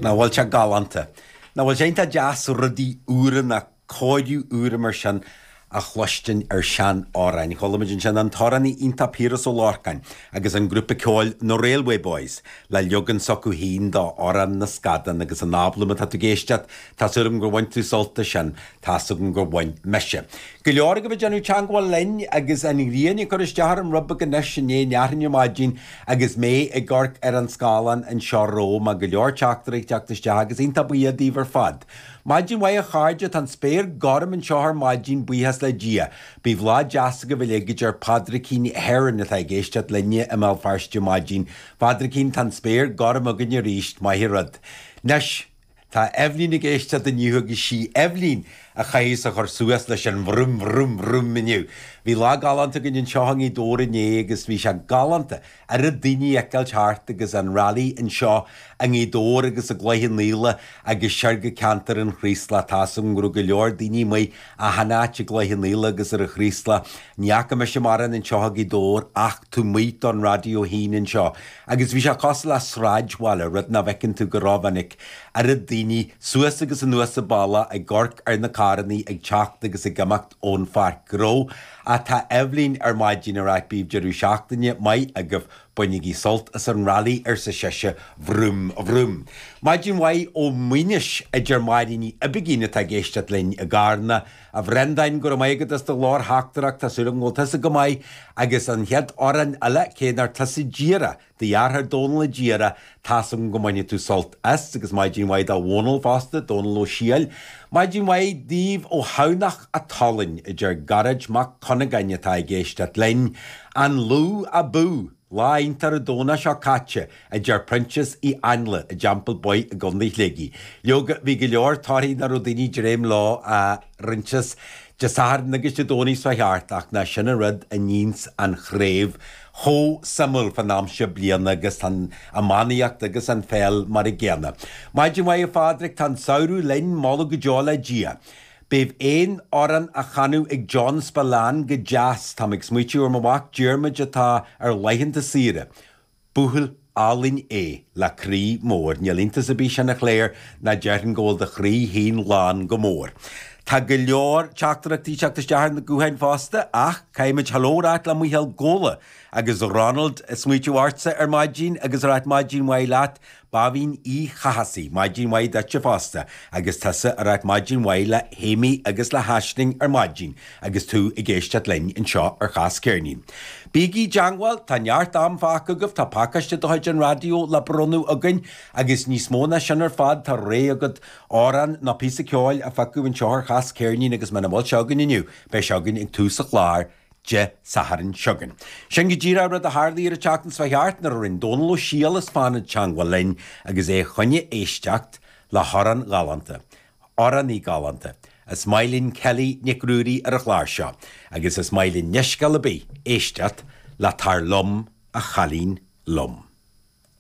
Nach bhfuil sé galánta? Nach bhfuil sé iontach deas rudaí úra ná cóiriú úr mar sin a chluistin ar sean amhráin. Chualamid ansin an t-amhránaí iontach Piaras Ó Lorcáin agus an grúpa ceoil Na Railway Boys le leagan s'acu féin de Amhrán na Scadán agus an albam, má tá tú ag éisteacht tá súil agam gur bhain tú sult as sin. Tá's agam gur bhain mise. Go leor agaibh ag déanamh teangmháil linn agus an ghrian ag cur isteach orm rud beag anois Dé hAoine ar maidin Agus mé ag amharc ar an scáileán anseo romham tá go leor teachtaireacht ag teacht isteach agus iontach buíoch díobh ar fad. Maidin mhaith a chairde, tá an spéir gorm anseo ar maidin, buíochas le Dia. Bíodh lá deas agaibh uilig, a deir Padraicín Heron atá ag éisteacht linn i mBéal Feirste. Maidin, a Phadraicín, tá an spéir gorm againn arís, maith rud. Anois. Tá Eibhlín ag éisteacht inniu agus sí Eibhlín a chaithfeas a chur suas leis an bhroim bhroim bhroim inniu. Bhí lá galánta againn anseo i nGaoth Dobhair inné agus bhí sé galánta oiread daoine a fheiceáil thart agus an rally anseo i nGaoth Dobhair agus i gCloich an Fhaola agus siar go ceantar an Chraoslaigh. Tá go leor daoine amuigh Achan áit i gCloich an Aoil agus ar an Chraoslach, ní fhaca mise mórán anseo i nGaoth Dobhair ach taobh amuigh don raidió fhéin anseo agus bhí sé cosúil le sráidbhaile, rud ná bhfeiceann tú go rómhinic. Oiread daoine suas agus anuas an baile ag amharc ar na carrannaí ag teacht agus ag imeacht ón pháirc ghnó. Tá Eibhlín ar maidin, ag ráit bíodh deireadh seachtaine maith agaibh. Bainigí sult as an rally, arsa sise, vroom, vroom. Maidin mhaith ó Mhaínis, a deir Máire Ní Uiginn atá ag éisteacht linn i gCarna. A Bhreandáin, go raibh maith agat as do ghlórtheachtaireacht, tá súil agam go bhfuil tusa go maith. Agus an chéad amhrán eile, cé nár tusa a d'iarr é, do dheartháir Dónal a d'iarr é Tá's agam go mbainfidh tú sult as agus maidin mhaith do Dhónall fosta, Dónall Ó Siadhail. Maidin mhaith daoibh ó Thamhnach a' tSalainn, a deir Gearóid Mac Cuinneagáin atá ag éisteacht linn. An Lú abú! Lá iontach an Domhnach seo caite, a deir Proinsias Ó hÁinle i dTeampall Buí i gContae Shligigh. Leoga, bhí go leor torthaí ná raibh daoine dréim leo ar ndóighe as Dé Sathairn agus Dé Domhnaigh seo thart, ach nach sin an rud a níonns an chraobh. chomh suimiúil fan am seo bliana agus tá an iománaíocht agus an pheil mar an gcéanna. Maidin mhaith a Phádraic, tá an samhradh linn, moladh go deo le Dia. Bheadh aon amhrán á chanadh ag John Spillane go deas, táim ag smaoitiú ar mo mhac Diarmuid atá ar laethanta saoire. Buachaill. álainn é, le croí mór. Níl iontas ar bith sin, a Clare, nó déarfainn go bhfuil do chroí féin lán chomh mór. Tá go leor teachtaireachtaí ag teacht isteach ar na gutháin fosta, ach caithfidh muid Hello a ráit le Micheál Ghabhla agus Ronald ag smaoitiú ortsa ar maidin agus ag ráit maidin mhaith leat. Báibhín Uí Chathasaigh, maidin mhaith duitse fosta agus tusa ag ráit maidin mhaith le hAmy agus le hAisling ar maidin. Agus tú ag éisteacht linn anseo ar Chás Ceirnín, bígí i dteangmháil, tá neart am fágtha agaibh, tá pacáiste de chuid an raidió le bronnadh againn, agus níos mó ná sin ar fad, tá ré agat amhrán nó píosa ceoil a phiocadh anseo ar Chás Ceirnín agus muna bhfuil sé againn inniu, beidh sé againn ag tús an chláir Dé Sathairn seo chugainn. Sin go díreach rud a tharlaigh ar an tseachtain seo thart nuair a rinn Dónal Ó Siadhail as Fánaid teangmháil linn agus é ag iarraidh éisteacht le hamhrán galánta Amhránaí galánta. Is maith linn Kelly Nic Ruairí ar an gclár seo agus is maith linn leithscéal ar bith éisteacht le 'Tar liom, a chailín liom'.